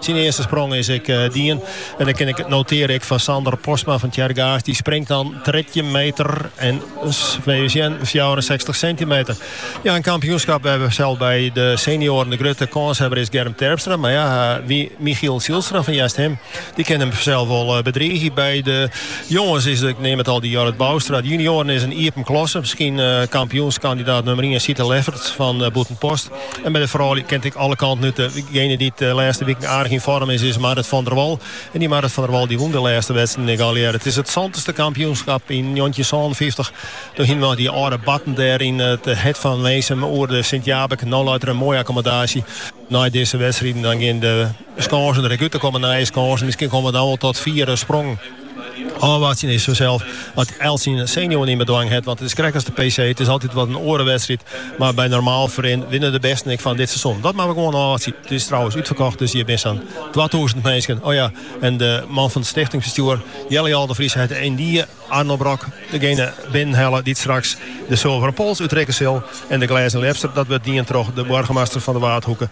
Syn earste sprong is ek dien. En dan kin ik notearje ek fan Sander Postma fan Tsjerkgaast. Dy springt dan 13 meter en we sjen 64 sintimeter. Ja, in kampioenskap wêr't fansels by de senioaren de grutte kânshawwer is Germ Terpstra. Mar ja, wie Michiel Zijlstra fan Easthim, dy kin him fansels wol bedriigje. By de jonges is ik neam it al dy Jorrit Bouwstra. De junioaren is in iepen klasse. Miskien kampioenskandidaat nûmer 1 Sita Leffert fan Bûtenpost. En by de froulju kin it ek alle kanten út. Dejene dy't de lêste wiken aardich yn foarm is, is Marrit van der Wal. En dy Marrit van der Wal dy wûn de lêste wedstriden ek allegearre. It is it santichste kampioenskap yn njoggentjinsânenfyftich. Doe hiene we dy âlde batten dêr yn it hert fan Winsum oer de Sint-Jabik. No leit der in moaie akkomodaasje. Nei dizze wedstriden dan gean de. Skansen der ek út. Der komme nije skansen. Miskien komme dan wol tot fiere sprongen. Ofwachtsjen is fansels at elts syn senuwen yn bedwang hat. Want it is krekt as de PC. It is altyd wat in oare wedstriid. Mar by normaal ferrin winne de bêsten ek fan dit seizoen. Dat moatte we gewoan ôfwachtsjen. It is trouwens útferkocht dus hjir binne sa'n twatûzen minsken. O ja, en de man fan it stichtingsbestjoer, Jelle Jal de Vries, hat yndie Arno Brok, degene binnenhelle dy't straks de Sulveren Pols útrikke sil. En de Glêzen Ljepster, dat wurdt dien troch de boargemaster fan de Waadhoeke,